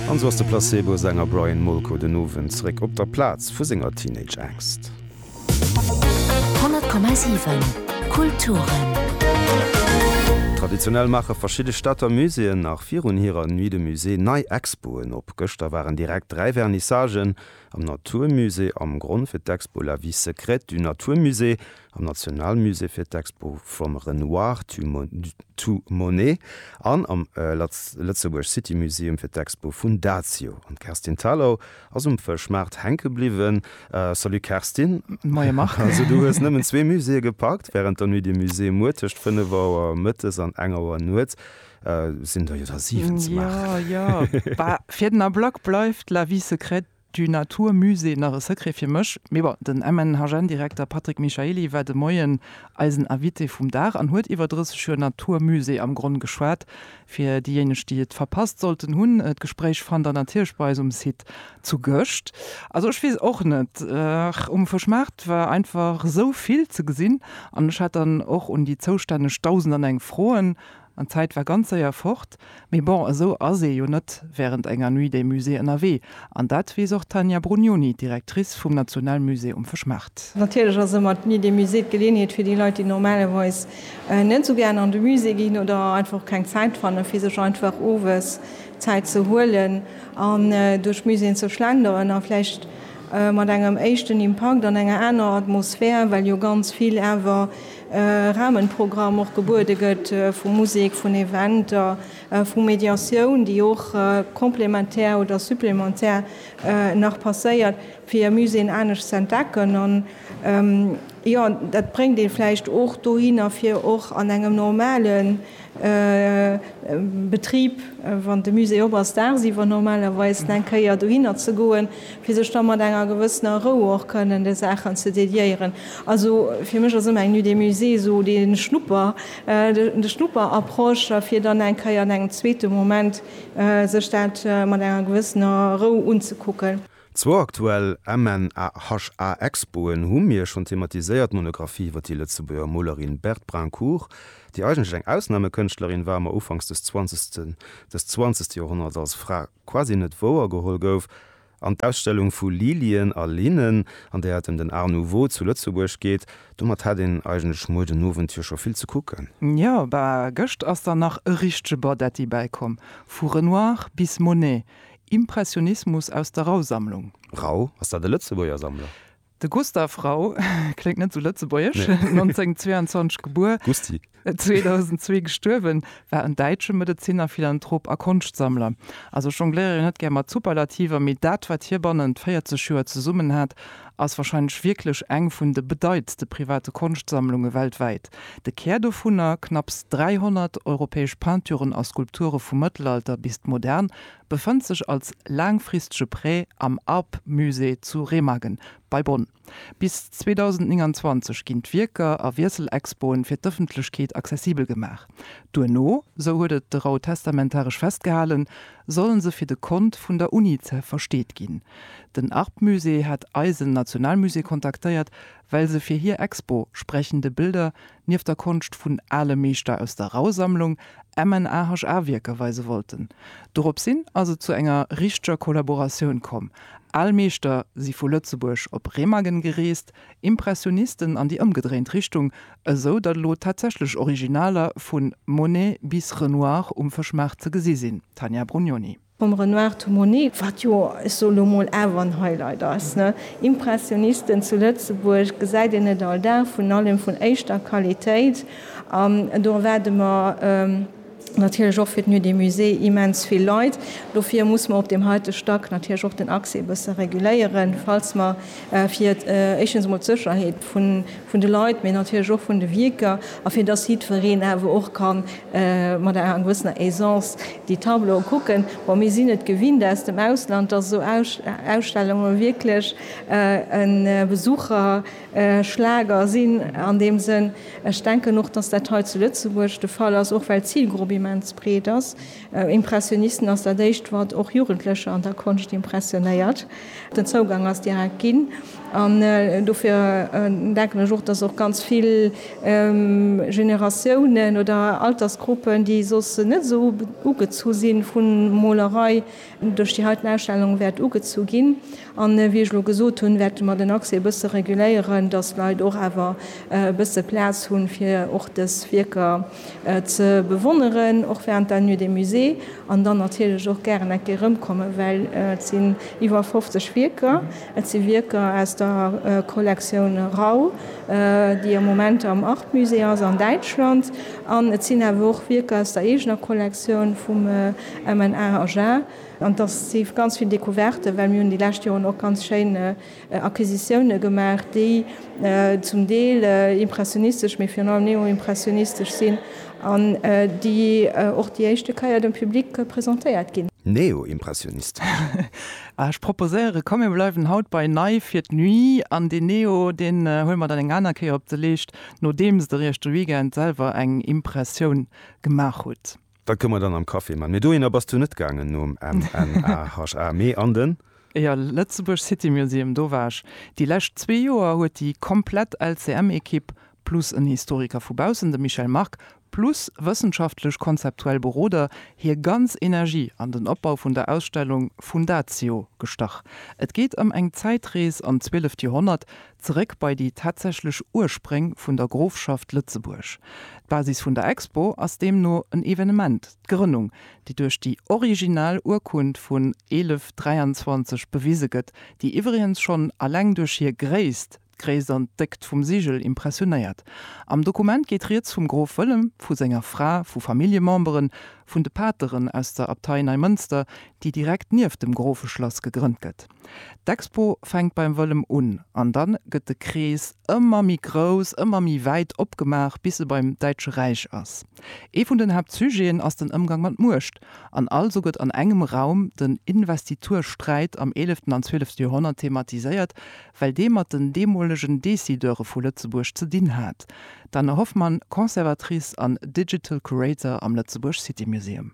An sou ass de Placebo-Sänger Brian Molko den Owend zeréck op der Plaz vu senger Teenage-Angscht. 100,7 Kulturen. Traditionell maache verschidde Stater Muséeën nach virun hirer Nuit de Musée nei Expoen op. Gëschter waren direkt dräi Vernissagen, am Naturmusée, am Gronn fir d'Expo La vie secrète du naturmusée am Nationalmusée fir d'Expo From Renoir to Monet an am Lëtzebuerg City Museum fir d'Expo vun Dazio. An d'Kerstin Thalau ass um Fëschmaart hänke bliwwen. Salut Kerstin. Moie Marc. Also du hues nëmmen zwee Muséeë gepackt wärend der Nuit des Musées. Muer tëscht 5 Auer mëttes an 1 Auer nuets sinn der jo der 7 ze maachen. Jo, jo, bah, fir den Ablack bleift La vie secrète Du natur musée nach e Secret fir mech, mee bon. Den MNHN-Direkter Patrick Michaely war de Moien eisen Invité vum Dag an huet iwwer 30 Joer natur musée am Gronn geschwat. Fir déijéineg déi et verpasst sollten hunn, d'Gespréich fannt der natierlech bei eis um Site zu Gëscht. Also ech weess och net, um Fëschmaart war einfach esou vill ze gesinn an ech hat dann och un déi zoustänneg Dausend an eng Froen. An d'Zäit war ganz séier fort. Mee bon, esou ass ee jo net wärend enger Nuit des Musées ënnerwee. An dat weess och d'Tania Brugnoni, d'Directrice vum Nationalmusée um Fëschmaart. Natierlech ass ëmmer d'Nuit des Musées d'Geleeënheet fir déi Leit, déi normalerweis net esou gären an de Musée ginn oder einfach och keng Zäit fannen, fir sech einfach owes Zäit ze huelen an duerch d'Muséeën ze schlenderen. A vläicht mat engem éischten Impakt an enger anerer Atmosphär, well jo ganz vill awer Rahmenprogramm och gebuede gëtt vu Musek, vun Eventer, vu Mediatioun, déi och complémentaire oder supplémentaire nach passéiert, fir e Musée anescht ze entdecken. An jo, dat bréngt ee vläicht och dohinner, fir och an engem normalen Betrib, wann de Musée op ass, daagsiwwer normalerweis eng Kéier dohinner ze goen, fir sech da mat enger gewëssener Rou och kënnen de Saachen ze dediéieren. Also fir mech ass ëmmer eng Nuit des Musées esou dee Schnupper, de Schnupperapproche, fir dann eng Kéier an engem zweete Moment sech dat mat enger gewëssener Rou unzekucken. Zwou aktuell MNHA-Expoen hu mir schonn thematiséiert, d'Monographie iwwer déi Lëtzebuerger Molerin Berthe Brincourt, déi eigentlech eng Ausnamekënschtlerin war, ma ufanks des zwanzegsten des zwanzegste Joerhonnerts als Fra quasi net wouergeholl gouf, an d'Ausstellung vu Lilien a Linnen, an där et ëm den Art nouveau zu Lëtzebuerg geet. Domat hätt een eigentlech muer den Owend jo scho vill ze kucken. Jo, bah, gëscht ass dann nach e richtege Bardetti bäikomm, vu Renoir bis Monet, Impressionismus aus der Rau-Sammlung. Rau, ass dat e Lëtzebuerger Sammler? De Gustav Rau, kléngt net esou lëtzebuergesch, 1922 gebuer, 2002 gestuerwen, war en däitsche Medezinner, Philanthrop a Konschtsammler. Also ech jongléiere jo net gär mat Superlativer, mee dat wat hie bannent 40 Joer zesummen hat, ass warscheinlech wierklech eng vun de bedeitste private Konschtsammlunge weltwäit. De Kär dovunner, knapps 300 europäesch Peinturen a Skulpture vum Mëttelalter bis d'Modern, befënnt sech als laangfristege Prêt am Arp-Musée zu Remagen bei Bonn. Bis 2029 ginn d'Wierker a Wiesselexpoen fir d'Ëffentlechkeet accessibel gemaach. Duerno, sou huet et de Rau testamentaresch festgehalen, sollen se fir de Kont vun der Unice versteet ginn. Den Arp-Musée hat eisen Nationalmusée kontaktéiert, well se fir hir Expo Sprechende Bilder nieft der Konscht vun ale Meeschter aus der Rauhsammlung MNAHA Wierker weise wollten. Dorops hin ass et zu enger richteger Kollaboratioun komm, al Meeschter si vu Lëtzebuerg op Remagen gereest, Impressionisten an déi ëmgedréint Richtung, esou datt elo tatsächlech Originaler vu Monet bis Renoir um Fëschmaart ze gesi sinn, Tania Brugnoni. Vum Renoir to Monet, wat jo, ech soe lo mol, awer en Highlight ass, ne? Impressionisten zu Lëtzebuerg gesäit een net all Dag, vun allem vun éischter Qualitéit. An do erwaarde mer natierlech och fir d'Nuit des Musées immens vill Leit. Dofir muss mer op deem heite Stack natierlech och den Accès e bësse reguléieren, falls mer fir éischtens emol d'Sécherheet vun, vun de Leit, mee natierlech och vun de Wierker, a fir dass jiddwereen awer och ka mat enger gewëssener Aisance déi Tableaue kucken. Bon, mir sinn et gewinnt aus dem Ausland, dass esou Ausstellunge wierklech e Besucherschlager sinn. An deem Sënn, ech denken och, dass dat hei zu Lëtzebuerg de Fall ass, och well d'Zilgrupp immens breet ass. Impressionisten ass dat éischt wat och Jugendlecher an der Konscht impressionéiert. Den Zougang ass direkt ginn an dofir denken ech och, datt och ganz vill Generatiounen oder Altersgruppen, déi soss net esou ugezu si vu Molerei, Duerch déi heiten Ausstellung wäert ugezu ginn. An wéi ech elo gesot hunn, wäerte mer den Accès e bësse reguléieren, dass d'Leit och awer e bësse Plaz hunn, fir och dës Wierker ze bewonneren, och während der Nuit des Musées, an dann natierlech och gären eng Kéier erëmkommen, well et sinn iwwer 50 Wierker. Et si Wierker aus der Kollektioun Rau, déi am Moment am Art-Musée ass an Däitschland, an et sinn awer och Wierker aus der eegener Kollektioun vum. Emmen, Aar, Agen, an dass si ganz vill Découverten, well mir hunn déi lescht Joren och ganz schéin Acquisitiounen gemaach, déi zum Deel impressionistesch, mee virun allem neoimpressionistesch sinn an déi och déi éischte Keier dem Public presentéiert ginn. Neoimpressionistesch? Aah, ech proposéieren, komm mir bleiwen haut bei Nei fir d'Nuit an deen Neo, deen huele mer dann eng aner Kéier op de Leescht, nodeems de Richter Weekend selwer eng Impressioun gemaach hutt. Da komme mer dann am Café man. Mee dohinner bass du net gaangen nom MNAHA, mee an den. Jo, Lëtzebuerg City Museum, do war ech. Déi lescht zwee Joer huet déi komplett LCM-Ekipp plus en Historiker vu baussen, de Michel Mark, plus wëssenschaftlech konzeptuell Beroder hir ganz Energie an den Opbau vun der Ausstellung Fundatio gestach. Et geet ëm eng Zäitrees an d'zwieleft Joerhonnert, Zeréck bei déi tatsächlech Urspréng vun der Grofschaft Lëtzebuerg. D'Basis vun der Expo ass deemno en Evenement, d'Grënnung, déi duerch déi original Urkund vun 1123 bewise gëtt, déi iwwregens schonn alleng duerch hir Gréisst, d'Gréisst an d'Déckt vum Sigel, impressionéiert. Am Dokument geet rieds vum Grof Wëllem, vu senger Fra, vu Familljememberen, vun de Pateren aus der Abtei Neimënster, déi direkt nieft dem Grofeschlass gegrënnt gëtt. D'Expo fänkt beim Wëllem un an dann gëtt de Krees ëmmer méi grouss, ëmmer méi wäit opgemaach bis e beim Däitsche Räich ass. Ee vun den Haaptsujeten ass den Ëmgang mat Muecht an also gëtt an engem Raum den Investitursträit am eeleften an zwielefte Joerhonnert thematiséiert, well dee mat den deemolegen Decideure vu Lëtzebuerg ze dinn hat, d'Anne Hoffmann, Conservatrice an Digital Curator am Lëtzebuerg City Museum.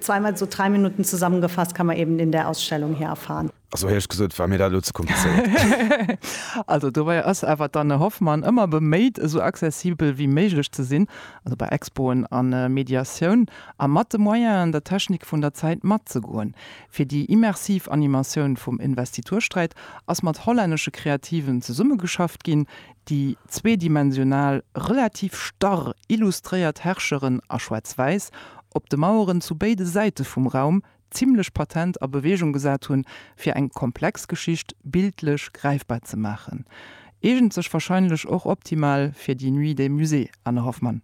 Zweimal so drei Minuten zusammengefasst kann man eben in der Ausstellung hier erfahren. Also héich gesot, war mir dat elo ze komplizéiert. Also dobäi ass awer d'Anne Hoffmann ëmmer beméit, esou accessibel wéi méiglech ze sinn, also bei Expoen a Mediatioun, a mat de Moyenen der Technik vun der Zäit matzegoen. Fir déi immersiv Animatioun vum Investitursträit ass mat hollännesche Kreativen zesummegeschafft ginn, Déi zweedimensional, relativ starr illustréiert Herrscheren a Schwaarz-Wäiss op de Maueren zu béide Säite vum Raum zimmlech patent a Bewegung gesat hunn, fir eng komplex Geschicht bildlech gräifbar ze maachen, eegent sech wahrscheinlech och optimal fir déi Nuit des Musées, Anne Hoffmann.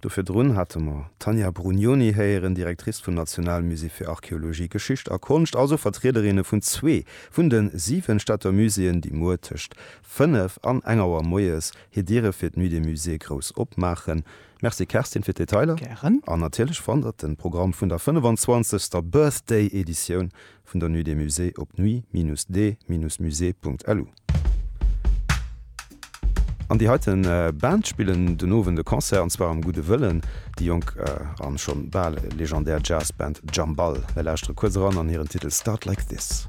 Do virdrun hate mer d'Tanja Brugnoni héieren, Directrice vum National Musée fir Archeologie, Geschicht a Konscht, also Vertriederinne vun zwee vun de siwen Stadter Muséeën, déi muer tëscht fënnef an eng Auer moies hir Diere fir d'Nuit des Musées grouss opmaachen. Merci Kerstin fir d'Detailer. Gären. An natierlech fannt der den Programm vun der 25. Birthday Editioun vun der Nuit des Musées op nuit-des-musées.lu. An déi heite Band spillen den Owend e Concert, an zwar am Gudde Wëllen. Déi jonk an schonn bal legendär Jazzband Jambal. Mir lauschtere kuerz eran an hiren Titel Start Like This.